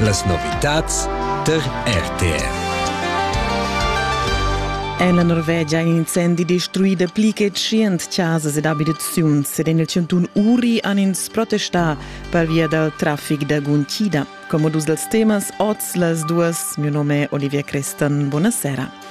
Las novitads tar RTR. En la Norvegia è incendi destruida pli che tschient chasas ed abitaziuns ed en il chantun Uri han ins protestà pervia dal traffic da guntida. Come dus dels temas, oz las duas. Mio nome è Olivia Crestan. Buonasera.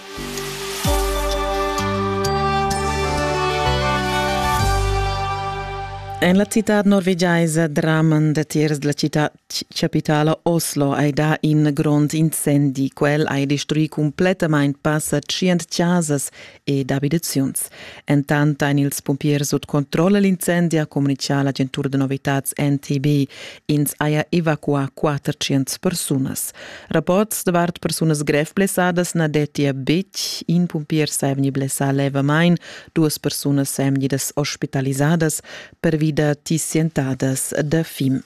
En la citad norvegiaisa Drammen, datiers della città capitala Oslo, hai dà in grond incendi. Quel ha destruì completamain passa tschient chasas ed abitaziuns. Entant ein ils pumpiers sut controlla l'incendi ha communichà l'agentura da novitads NTB. Ins haja evacuà 400 persunas. Rapports davart persunas grev blessadas na dettia betg. In pumpier sa vegni blessà levamain, duas persunas sajan vegnidas ospitalisadas pervi da tissientadas da fim.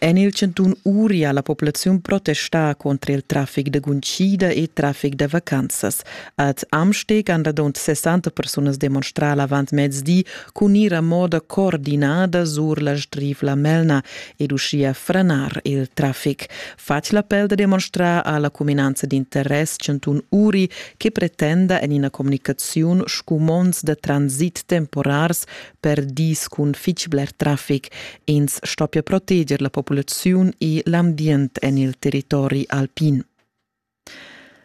En il chantun Uri ha la populaziun protestà contra il traffic da guntgida e traffic da vacanzas. Ad Amsteg han radund 60 persunas demonstrà l'avantmezdi cun ir a moda coordinada sur la Strivla Melna ed uschia franar il traffic. Fatg l'appel da demonstrar a la cuminanza d'interess chantun Uri che pretenda en ina communicaziun scumonds da transit temporars per dis cun fitg bler traffic. Ins stoppia proteger la populaziun e l'ambient en il territori alpin.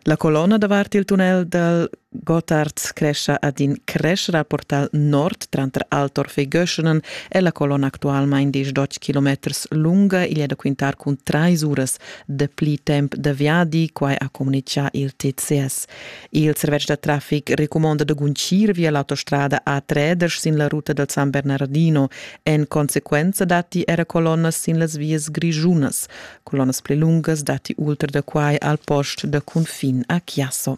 La colonna davart il tunnel dal Gotthard crescia ad in creschera portal nord tranter Altorf e Göschenen e la colonna actualmain 18 km lunga igl è da quintar cun trais uras de pli temp da viadi, quai ha communitgà il TCS. Il servetsch da traffic recumonda da guncir via l'autostrada A3 sin la ruta dal San Bernardino. En consequenza datti era colonnas sin las vias grischunas. Colonnas pli lungas datti ultra da quai al post da cunfin a Chiasso.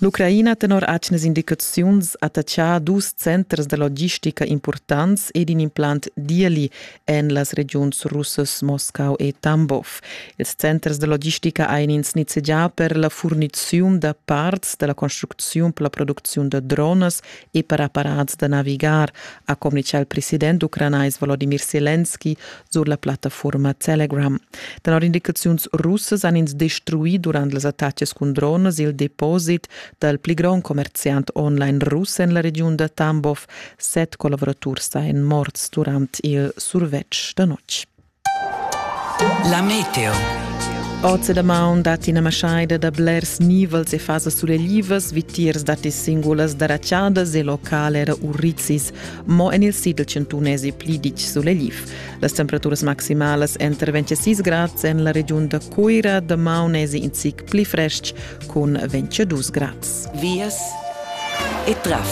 L'Ucraina tenor atgnas indicaziuns attachà dus centers da logistica impurtants ed in implant Dieli. en las regiuns russas Moscau e Tambov. Ils centers de logistica ein ins nizzegià per la furniziun da parts dalla construcziun per la producziun da dronas e per apparats da navigar, ha communicà il president ucranais Volodymyr Zelensky sur la plattaforma Telegram. Tenor indicaziuns russas han ins destruì durant las attaccs cun dronas il deposit dal pli grond commerziant online russ en la regiun da Tambov, Set collavuraturs sajan morts durant il survetsch da notg. La meteo. Oz è da maun dat ina maschaida da blers nivels e fasas sulelivas, vitiers datti singulas daraciadas e local era urrizis, mo en il sidl chantunais è pli ditg suleliv. Las temperaturas maximalas entro 26 grads en la regiun da Coira, da maun è in zic pli frestg, cun 22 grads. Vias e traffic.